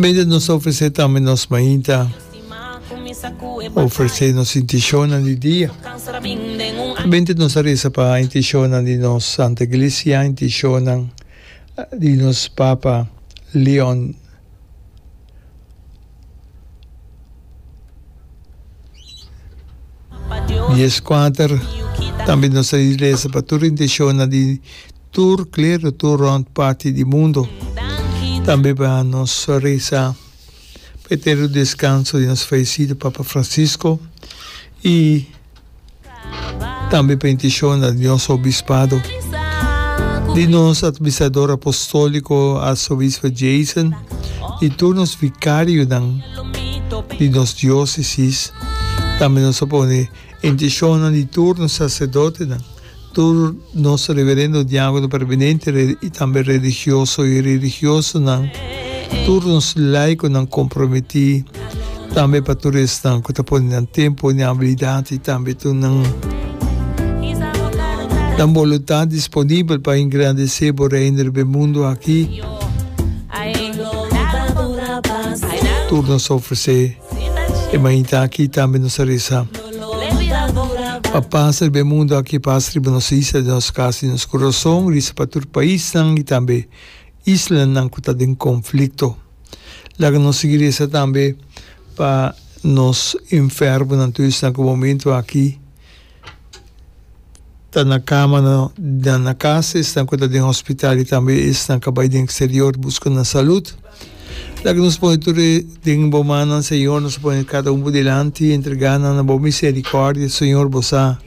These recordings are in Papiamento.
Mester nos a ofresé tambe nos mainta, ofresé nos intenshonan di dia. Mester nos a resa pa intenshonan di nos Santa Iglesia, intenshonan di nos Papa Leon Dies Kuater, tambe nos a resa pa tur intenshonan di. Tur klero, tur rònt parti di mundu. Tambe pa nos resa pa e eterno deskanso di nos falesido Papa Fransisko i tambe pa intishonnan di nos obispado, di nos atministrador apostòliko Arsobispo Jason, di tur nos vikarionan di nos diósesis. Tambe nos a pone intishonnan di tur nos saserdotenan. Tur nos reverendo diakono permanente y tambe religioso y religiosonan, tur nos laikonan komprometí, tambe pa tur esnan ku ta pone nan tempo, nan abilidat y tambe tur nan boluntat disponibel pa engrandesé bo Reino riba e mundu aki, tur nos ofresé. E mainta aki tambe nos a resa, Pa pas riba e mundu aki, pas riba nos isla, den nos kas, den nos kurason, risa pa tur paisnan i tambe islanan ku ta den konflikto. Laga nos sigui resa tambe pa nos enfermunan, tur esnan ku momentu aki. ta na kamanan den nan kas, esnan ku ta den hospital i tambe esnan ku a bai den eksterior buska nan salud. Laga nos pone tur e den bo mannan, Señor. Nos ta pone kada un bo dilanti, entregá nan na bo miserikòrdia, Señor. Bo sa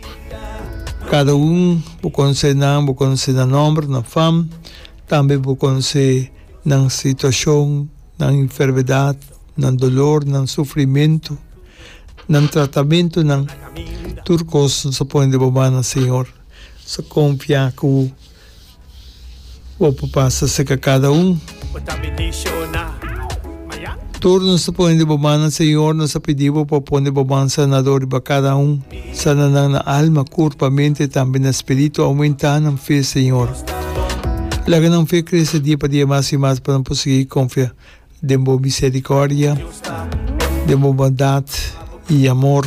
kada un, bo konosé nan, bo konosé nan nòmber, nan fam, tambe bo konosé nan situashon, nan enfermedat. nan dolor, nan sufrimentu, nan tratamentunan, tur kos nos a pone den bo mannan, Señor. Nos a konfiá ku bo por pasa serka kada un. Tur nos a pone den bo mannan, Señor, nos a pidi bo pa pone bo man sanadó riba kada un. Sana nan na alma, kurpa, mente i tambe na spiritu. Oumentá nan fe, Señor. Laga nan fe krese dia pa dia mas i mas pa nan por sigui konfiá Den bo misericordia, den bo bondad y amor,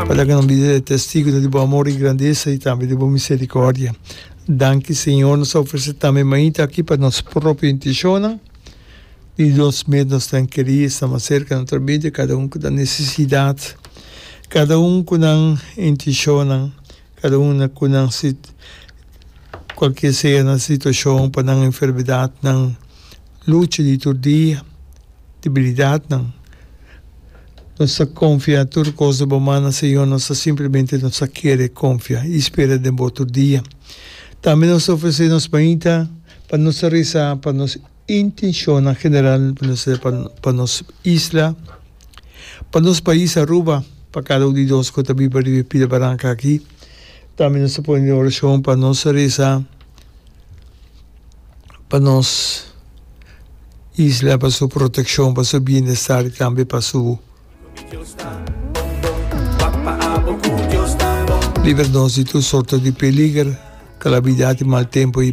para que nos vida sea testigo di bo amor y grandeza y tambe di bo misericordia. Danki, Señor, nos ta ofrece tambe mainta aki pa nos propio intencionnan, di nos mes nos ta keri esta mas cerca nan tra bida, cada un cu ta necesidad, cada un cu nan intencionnan Kada un na ku nan sit kualkier sea nan situashon pa nan enfermedatnan lucha di tur dia, debilidatnan. Nos ta konfia tur kos na bo man, a Señor, nos ta simplemente nos ta kere konfia i spera den bo tur dia. Tambe nos ta ofresé nos mainta pa nos ta resa pa nos. Intencionnan general pa nos e pa nos isla, pa nos pais Aruba, pa cada un di nos cu ta biba riba e pida baranca aki. Tambe nos ta pone den oracion pa nos reza pa nos isla, pa su proteccion, pa su bienestar y tambe pa su libra nos di tur sorto di peliger, calamidad y mal tempo.